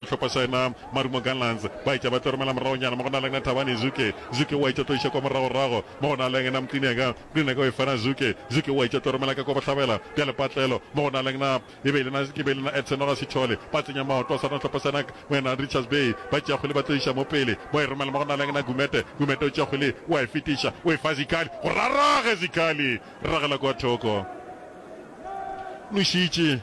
Sehlopha sa yena Marumo Gallants ba etša ba tlo romela moragonyana mo go na le yena Thabani Zuke. Zuke o a etša tlo iša kwa moragorago mo go na le yena Mtinega. Mtinega o e fana Zuke. Zuke o a etša tlo romela ka kwa bohlabela bja lepatlelo mo go na le yena e be e le yena e be e le yena Edson Noga Sithole. Ba tsenya maoto a sa rena sehlopha sa yena mo yena Richards Bay ba tšea kgwele ba tlo iša mo pele ba e romela mo go na le yena Gumede. Gumede o tšea kgwele o a e fetiša o e fa Zikhali gore a rage. Zikhali ragela kwa thoko nošitše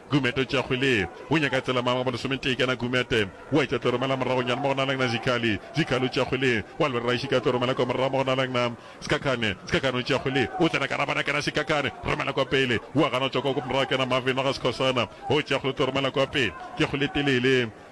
Gumete o tšea kgwele ye. O nyaka tsela mang wa bo lesometee kana Gumete? Wa etša tlo romela moragonyana mo go na le nna Zikhali. Zikhali o tšea kgwele ye. Wa lwerera ešita a tlo romela kwa morago mo go na le nna Sikakhane. Sikakhane o tšea kgwele ye. O tsena ka rabana kana Sikakhane. Romela kwa pele. Wa gana o tšwa kwa morago kana Marvin wa ga Sikhosana. O tšea kgwele o tlo romela kwa pele. Ke kgwele e telele.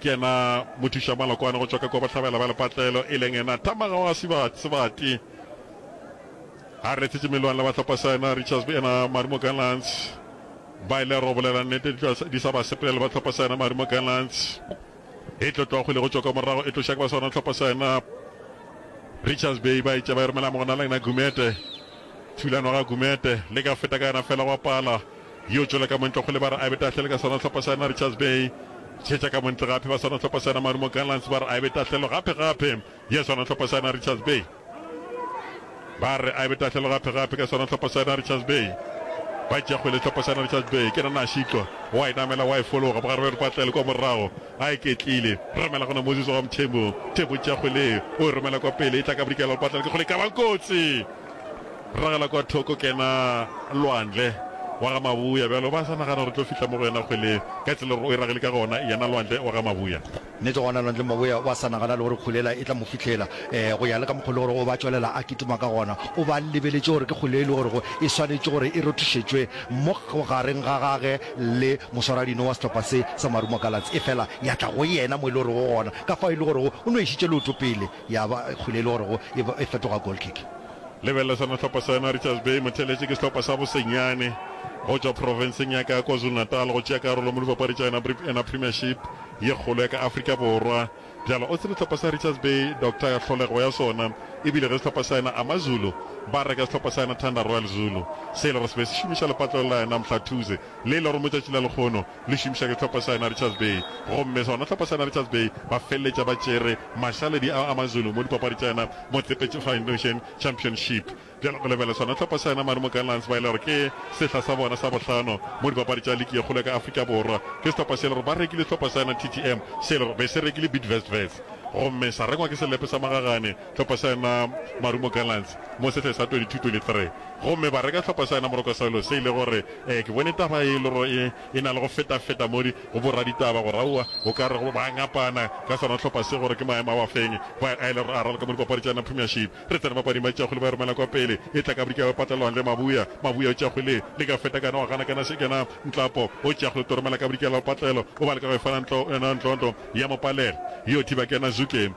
Ke yena mothuša malokwane go tšwa ka kwa bohlabela ba lepatlelo, e leng yena tamaga wa Sebati. Sebati a retetše Meloan le bahlopha sa yena Richards be yena Marimo Gallants ba ile go bolela nnete di sa ba sepele le bahlopha sa yena Marimo Gallants e tlo tloa kgole go tšwa ka morago e tloša ke ba sa yona hlopha sa yena Richards Bay ba itša ba e romela mogona la yena Gumete thulano ga Gumete le ka feta ka yena fela go pala Yo tšwela ka montle go le ba re Abe Tahlele ka sona hlopha sa yena Richards Bay. Tšhetša ka montle gape ba sona hlopha sa yena Marumo Gallants ba re Abe Tahlelo gape gape ya sona hlopha sa yena Richards Bay. Ba re Abe Tahlelo gape gape ka sona hlopha sa yena Richards Bay. Ba tšea kgwele hlopha sa yena Richards Bay. Ke nana a šitlwa wa e namela wa e fologa ba re Patlele kwa morago a e ketlile romela gona Moses wa Mthembu. Mthembu tšea kgwele o e romela kwa pele e tla ka bodikela Patlele ke kgole ka ba kotsi. Ragela kwa thoko kena lwandle wa ga Mabuya bjalo ba sa nagana gore tlo fihla mo go yena kgwele ka tsela gore o e ragele ka gona yena lwandle wa ga Mabuya. Nnete gona lwandle Mabuya wa sa nagana le gore kgwele e tla mo fihlela go ya le ka mokgwa le gore o ba tšwelela a kitima ka gona o ba lebeletše gore ke kgwele e le gore go e swanetše gore e rothišetšwe mo gareng ga gage le moswaradino wa sehlopha se sa Marumo Gallants efela ya tla go yena mo e le gore go gona ka fao e le gore o no išitše leoto pele Ya ba kgole e le gore go e fetoga goal kick. Lebelela sona sehlopha sena, Richards Bay Motheletše ke sehlopha sa bosenyane go tšwa profenseng ya ka KwaZulu-Natal go tšea karolo mo dipapadi tša Enabri Ena Premiership ye kgolo ya ka Afrika Borwa. Bjalo o tsebe sehlopha sa Richards Bay Doctor ya tlholego ya sona e bile ge sehlopha sa ena AmaZulu ba reka sehlopha sa ena Thunder Royal Zulu se e le gore se be se šomiša lepatlelo la ena Mhlathuze le e le gore mo tšatši la lekgono le šomiša ke hlopha sa yona Richards Bay gomme sona hlopha sa yona Richards Bay ba feleletša ba tšere mašaledi ao a Mazulu mo dipapadi tša yona Motsepe Foundation Championship. Bjale go lebelelwa sona hlopha sa yona Marumo Gallants ba e le gore ke sehla sa bona sa bohlano mo dipapadi tša liki ye kgolo ya ka Afrika Borwa. Ke sehlopha se e le gore ba rekile hlopha sa yona TTM se e le gore be se rekile Bidvest Wits gomme sa rengwa ke selepe sa magagane hlopha sa yona Marumo Gallants mo sehleng sa 22-23 gomme ba reka hlopha sa yona Moroko Swallows se e le gore ee ke bone taba ye e le gore e e na le go feta-feta mo di go boraditaba gore aowa o ka re go ba ngapana ka sona hlopha se gore ke maemo a wa feng ba a e le gore a raloka mo dipapadi tša yona Premiership re tsena mapading ba tšakgwele ba e romela kwa pele e tla ka bodika ba patlelwang le Mabuya Mabuya o tšakgwele le ka feta kana wa gana kana se kena Ntlapo o tšakgwele o toromela ka bodika la patlelo o ba le ka go e fana ntlo yona ntlontlo ya Mopalele yo thiba kena Zuke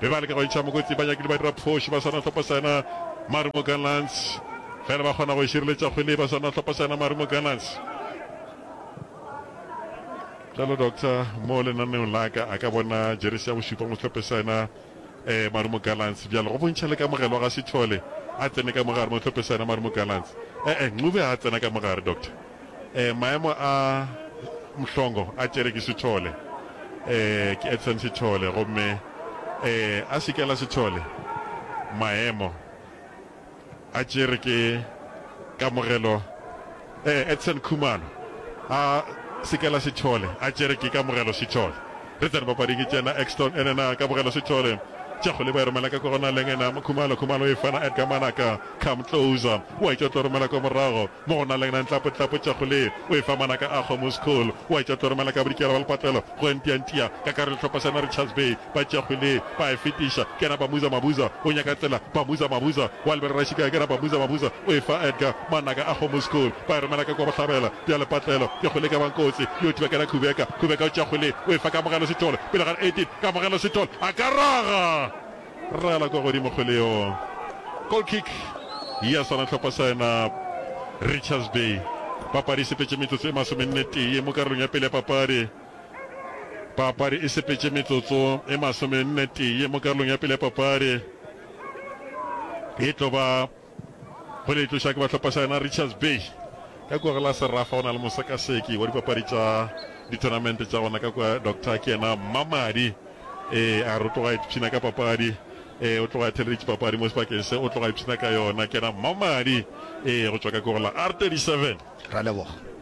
Be ba leka go ntšha mokoti banyakedi ba dira phošo ba sa na hlopa sena Marumo Gallants fela ba kgona go šireletša kgwele ba sa na hlopa sena Marumo Gallants. Jalo doctor mo lenaneong la ka a ka bona jeresi ya bošupa mo hlope sena eh, Marumo Gallants bjalo go bontšha le kamogelwa ga Sithole a tsene ka mogare mo hlope sena Marumo Gallants eh, eh, Ncube a tsena ka mogare doctor. Eh, maemo a Mhlongo a tšere ke Sithole. Eh, ke Edson Sithole. Gomme, eh, a Sikela Sithole, maemo a tšere ke Kamogelo, eh, Edson Khumalo. A Sikela Sithole, a tšere ke Kamogelo Sithole. Re tsene papading ke tšena Exton, ene na Kamogelo Sithole. Tšakgole ba e romela ka kogonaleng, ena Khumalo, Khumalo e fana Edgar Manaka. Come closer. Wa e tšotlo romela kwa morago. Mo go na lengna ntlapo tlapo tša go le o e fa ngwana ka akgo mo school wa etša tlo romela ka bodikela ba lepatlelo go ntia ntia ka ka re lehlopha sa na Richards Bay ba tšea go le ba e fetiša ke na Bamuza Mabuza o nyaka tsela Bamuza Mabuza wa lebelela šika ke na Bamuza Mabuza o e fa Edgar ngwana ka akgo mo school ba e romela ka kwa bohlabela bja lepatlelo ke go le ka ba nkotsi yo thiba ke na Khubeka Khubeka o tšea go le o e fa Kamogelo Sithole pele ga re 18 Kamogelo Sithole a ka raga Rala kwa godimo kgwele yo. Goal kick ya swana tlhopha sa yena Richards Bay. Papadi e sepetše metsotso e masomennetee mo karolong ya pele ya papadi. Papadi e sepetše metsotso e masomennetee mo karolong ya pele ya papadi. E tlo ba Go le tloša ke bahlopha sa yona Richards Bay ka kua go la Serafa go na le mosekaseki wa dipapadi tša dithonamente tša gona ka kua Doctor ke yena Mmamadi ee a re o tloga ipshina ka papadi ee o tloga theleditše papadi mo sebakeng se o tloga ipshina ka yona ke yena Mmamadi ee go tšwa ka kua go la R37 Ra leboga.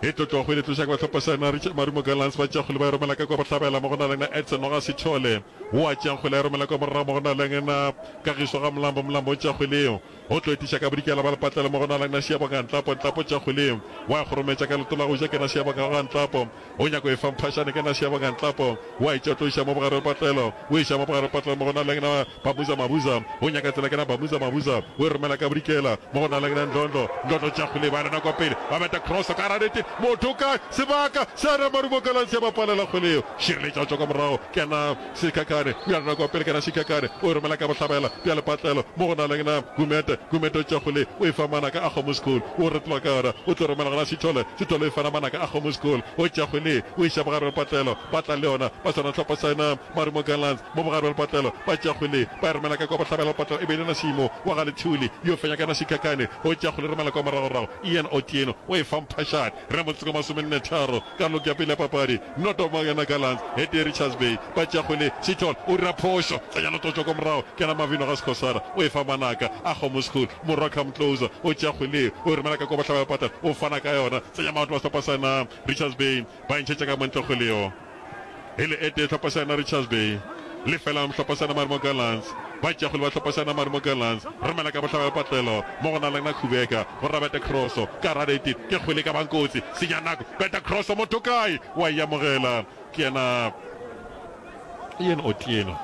Ke tlotlo go le tloša ke ba tlhopha Saena Richard Marumo Gallants ba tšea kgole ba e romela ka kwa Bohlabela mo go na lena Edson Noga Sithole wo a tšeang kgole a e romela kwa morago mo go na lena Kagišo ga Mlambo Mlambo o tšea kgole eo o tlo etiša ka Bodikela ba Lepatlelo mo go na lena Seabonga Ntlapo Ntlapo o tšea kgole eo wa e kgorometša ka leto la go ja kena Seabonga ga Ntlapo O nyaka go e fa mphašane ke nase ya bongantlapo, o a e tšea o tlo iša mo bogare le potlelo, o e iša mo bogare le potlelo mo go na leng na Bamuza Mabuza, o nyaka tsela ke na Bamuza Mabuza, o e romela ka bodikela mo go na leng na Ndlondlo, Ndlondlo o tšea kgole e ba lena kwa pele, ba beta cross ka gare ga nete, motho o kae, sebaka, Seana Marumo Galansia ba palela kgole yeo, šireletša o tšwa kwa morago ke na. Shikakane, o ya rena kwa pele kana Shikakane o e romela ka bohlabela bja lepatlelo mo go na leng na Gumete, Gumete o tšwa go le o e fa manaka a kgomo School o retloa ka yona o tlo romela gona Sithole, Sithole o e fana manaka a kgomo School o tšwa go le o iša bogare bja lepatlelo ba tla le yona ba swana hlopha sa ena Marumo Gallants mo bogare bja lepatlelo ba tšwa go le ba e romela ka kwa bohlabela lepatlelo e be e le na Simo wa ga Lethuli yo fenya kana Shikakane o tšwa go le romela kwa moragorago Ian Otieno o e fa Mphashane re motse kwa masomenne tharo Ka log ya pele ya papadi, Noto ba yona Gallants, Hettie Richards Bay ba tšea kgwele, Sithole o dira phošo, tsenya Lototšwa ka morago, kena Mavhino ga Skhosana, o e fa Manaka, Akgomo School, Morwa Come Closer o tšea kgwele ye, o e romela ka kwa bohlaba ya pata, o fana ka yona, tsenya Maoto wa sehlopha sa na Richards Bay, ba e ntšhetša ka mo ntle kgwele yo. e le etee Hlopasana Richards Bay, Lefelang Hlopasana Marumo Gallants, Batšeakgwele ba Hlopasana Marumo Gallants, Romela ka Bohlabela Patlelo, mo go na le Nakhubeeka, go rera bete Kroso, ka rata ete ke kgwele ka bang kotsi, senya nako, bete Kroso motho kae, wa e amogela, ke yena Ian Otieno,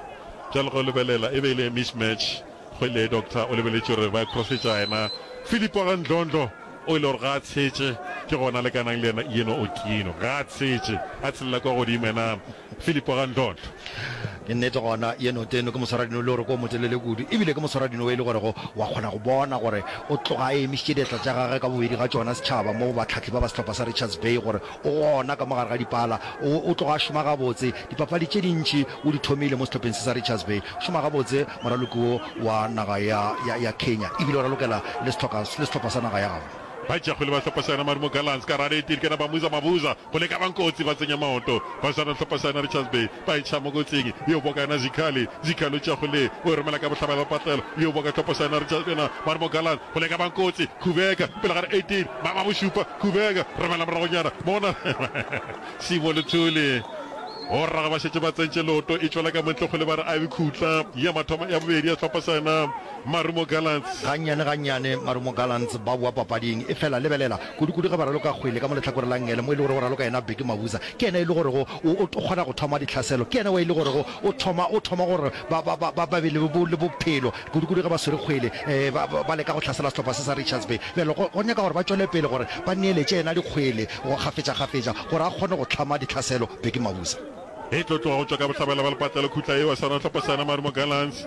bjale ge o lebelela e be e le miss match, kgwele ye Doctor o lebeletše gore ba e krosetša yena Philip wa ga Ndlondlo, o e le gore ga a tshetše, ke gona a lekanang le yena yeno okino. Ga a tshetše, a tshelela kwa godimo yena Filipo ga ntlhontlho. Ke nnete, gona yeno teno ke moswaradino e le goreko o motelele kudu, e bile ke moswaradino wo e le gorego wa kgona go bona gore o tloga a emišitše diatla tša gagwe ka bobedi ga tšona setšhaba moo bahlahli ba ba sehlopha sa Richards Bay gore O gona ka mo gare ga dipala. O, o tloga a šoma gabotse. Dipapadi tše dintši o di thomile mo sehlopheng se sa Richards Bay. O šoma gabotse, moraloki wo wa naga ya, ya, ya Kenya. E bile o ralokela le sehloka, le sehlopha sa naga ya gabo. Ba tšea kgwele ba hlopa Saena Marumo Gallants ka raleti, e di kena ba Muza Mavuza go leka ba Nkotsi ba tsenya maoto. Ba swara sehlopha Saena Richards Bay. ba iša mokotleng bjo boka yona zikhali zikhalo tša go le o romela ka bohlabela ba patlelo bjo boka tlopo sa yona re tša yona ba re mogalan go le ka bankotsi khubeka pele ga re 18 ba ba bošupa khubeka romela moragonyana mona sibo le thuli go rrago ba šetše ba tsentše loto e tšwela ka montle go le ba re a be khutla ya mathomo ya bobedi ya tlhopo sa yona Marumo Gallants. Gannyane-gannyane Marumo Gallants ba boa papading, efela lebelela, kudu-kudu ge ba raloka kgwele ka mo lehlakore la Ngele mo e le gorego o raloka yena Bheki Mabuza, ke yena e le gorego o, o kgona go thoma dihlaselo, ke yena wa e le gorego o thoma, o thoma gore ba, ba, ba, ba be le, le bophelo, kudu-kudu ge ba swere kgwele, ee, ba, ba, ba leka go hlasela sehlopha se sa Richards Bay. Bjale go, go nyaka gore ba tšwele pele gore ba neeletše yena dikgwele go, kgafetša-kgafetša, gore a kgone go hlama dihlaselo Bheki Mabuza. E tlo tloga go tšwa ka bohlabela bja lepatlelo khutla yeo ya sona sehlopha sa yona Marumo Gallants.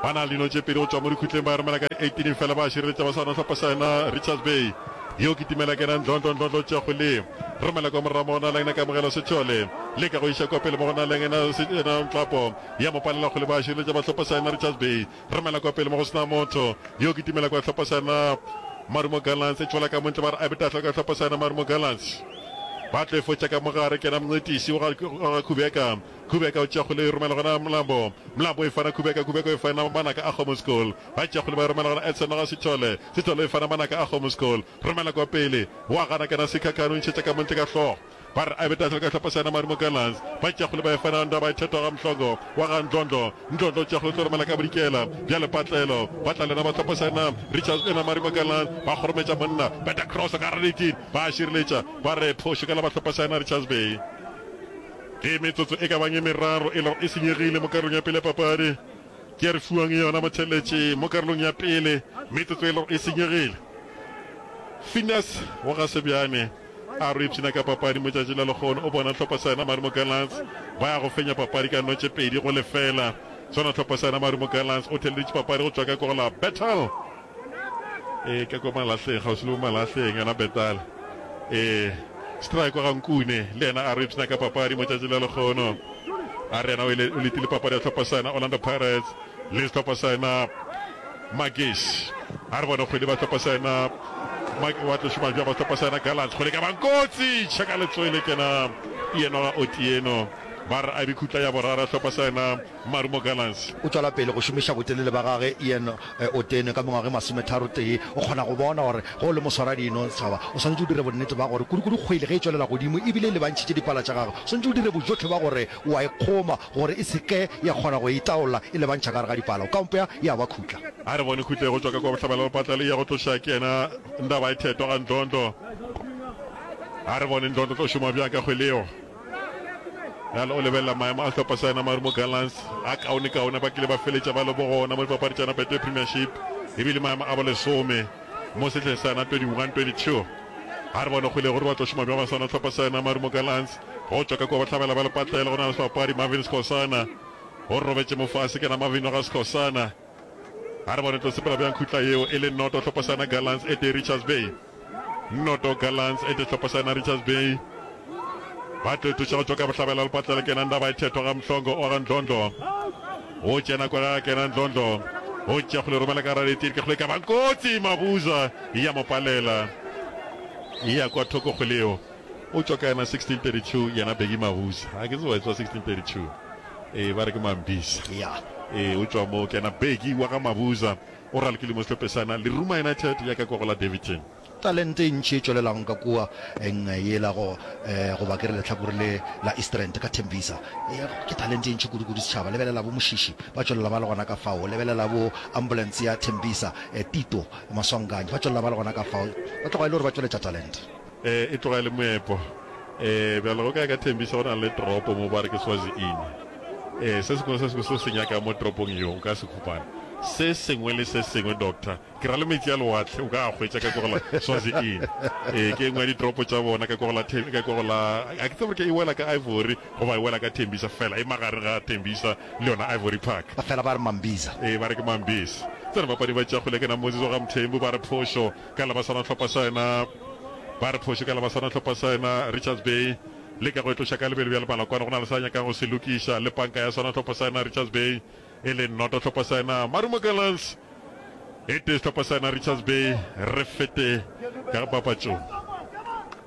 Ba na le dino tše pedi go tšwa mo dikhutleng ba e romela ka di 18 efela ba a šireletša ba sa no hlopha sa yona Richards Bay yo kitimela kena ndlondlo ndlondlo tša go le romela kwa morago mo go na leng na kamogelo Sechole leka go iša kwa pele mo go na leng ena ena Nhlapo ya mo palela kgole ba a šireletša ba hlopha sa yona Richards Bay romela kwa pele mo go sena motho yo kitimela kwa hlopha sa yona Marumo Gallants e tšwela ka montle ba re a betahla ka hlopha sa yona Marumo Gallants ba tlo e fotša ka mogare kena mncetisi wa ga khubeka Khubeka o tšea kgole e romela gona Mlambo, Mlambo e fana Khubeka, Khubeka e fana Manaka a Kgomo School, ba tšea kgole ba e romela gona Edson Noga Sithole, Sithole e fana Manaka a Kgomo School, romela kwa pele, o a gana kena Sikhakhane o ntšhetša ka montle ka hlogo, ba re a be tlase le ka hlopha sa yena Marumo Gallants, ba tšea kgole ba e fana Ndaba e thethwa ga Mhlongo wa ga Ndlondlo, Ndlondlo o tšea kgole o tlo romela ka Bodikela, bjale Patlelo, Patlelo ena ba hlopha sa yena Richards ena Marumo Gallants, ba kgorometša monna, beta cross ka gare Rickie, ba šireletša, ba re phošo ka la ba hlopha sa yena Richards Bay. Ge metsotso e ka bang e meraro e lego e senyegile mo karolong ya pele ya papadi, ke ya re fiwang yona motheeletši mo karolong ya pele, metsotso e lego e senyegile. Phineas wa ga Sebjane a re o ipshina ka papadi mo tšatši la lehono, o bona hlopha sa yena Marumo Gallants ba ya go fenya papadi ka notše pedi go lefela. Sona hlopha sa yena Marumo Gallants o theeleditše papadi go tšwa ka kogo la Bethal e ke ko malahleng ga o sele malahleng yona betal e strike wa gankune le yena a re ipsna ka papadi mo tšatši la lekgono a re yena o ile o letile papadi ya tlhopha sana Orlando Pirates le tlhopha sana Magis a re bona kgwedi ba tlhopha sana Magi wa tlo shuma ba tlhopha sana Gallant kgwedi ka bankotsi chaka letswele kena yena o tieno ba re a bikhutla ya borara tlhopha sana Marumo Gallants. O tšwela pele go šomiša botelele ba gage Ian Otene ka mengwaga e masometharo-tee. O kgona go bona gore ge o le moswaradino setšhaba o swanetše o dire bonnete ba gore kudukudu kgwele ge e tšwelela godimo e bile e lebantšhitše dipala tša gagwe, o swanetše o dire bojotlhe ba gore o a e kgoma gore e se ke ya kgona go e itaolla e lebantšha ka gare ga dipala. O ka mpea ya ba khutla. A re bone khutla e go tšwa ka kwa bohlabela le patla le e ya go tloša ke yena Ndaba-e-Thetwa ga Ndlondlo. A re bone Ndlondlo o tlo šoma bjang ka kgwele yeo. Bjale o lebelela maemo a sehlopha sa yena Marumo Gallants a kaonekaone. Ba kile ba feletša ba le bogona mo dipapadi tša Betway Premiership e bile maemo a bolesome mo sehleng sa yona 21-22. A re bone kgole gore ba tlo šoma bjang basana ba sehlopha sa yena Marumo Gallants go tšwa ka kua bohlabela ba lepatlela go na le sebapadi Marvin Skhosana. O robetše mo fase ke na Marvin wa ga Skhosana. A re bona re tlo sepela bjang khutla yeo e le noto Tlhophošana Gallants ete Richards Bay noto Gallants ete Tlhophošana Richards Bay ba tlo ithuša go tšwa ka bohlabela lepatlela kena ndaba e thethwa ga Mhlongo o ga Ndlondlo o tšena kwa ga kena Ndlondlo o tšea go le romela ka raditiri ka go le ka ba kotsi Mabuza ya mo palela ya kwa thoko go leo O tšwa ka yena 1632 yena Bheki Mahuza ha ke tsebe wa tswa 1632 ee ba re ke Mambisa ee o tšwa moo ke yena Bheki wa ga Mabuza o raloke limo sehlopesana Leruma United ya ka kwa go la Daveyton. Talente e ntši e tšwelelago ka kua eng yela go goba ke re lehlakore le la Eastrand ka Tembisa ke talente e ntši kudu kudu setšhaba lebelela bo Moshishi ba tšwelela ba le gona ka fao lebelela bo Ambulance ya Tembisa Tito Maswanganyi ba tšwelela ba le gona ka fao ba tloga e le gore ba tšweletša talente E tloga e le moepo. Ee, bjale go ka ka thembiša go na le tropo mo ba re ke Swazi-ini. Ee, se sengwe le se sengwe se o se nyakago mo tropong yeo o ka se khupana. Se sengwe le se sengwe, Doctor. Ke ra le meetse a lewatle o ka a hwetša ka kwa go la Swazi-ini. Ee, ke e nngwe ya ditropo tša bona ka kwa go la Tem-, ka kwa go la, ga ke tsebe gore ke e wela ka Ivory goba e wela ka Tembisa, feela e magareng ga Tembisa le yona Ivory Park. Ba fela ba re Mambisa. Ee, ba re ke Mambisa. Tsena bapadi ba tšakgole ke na Moses wa ga Mthembu ba re phošo ka la baswana hlopha sa yona ba re phoše ka la baswana hlopha sa yona Richards Bay le ka go etloša ka lebelo bja lebala kwana go na le sa nyakang go se lokiša le panka ya swana hlopha sa yona Richards Bay e le noto hlopha sa yona Marumo Gallants e tee sehlopha sa yona Richards Bay re fete ka papatšong.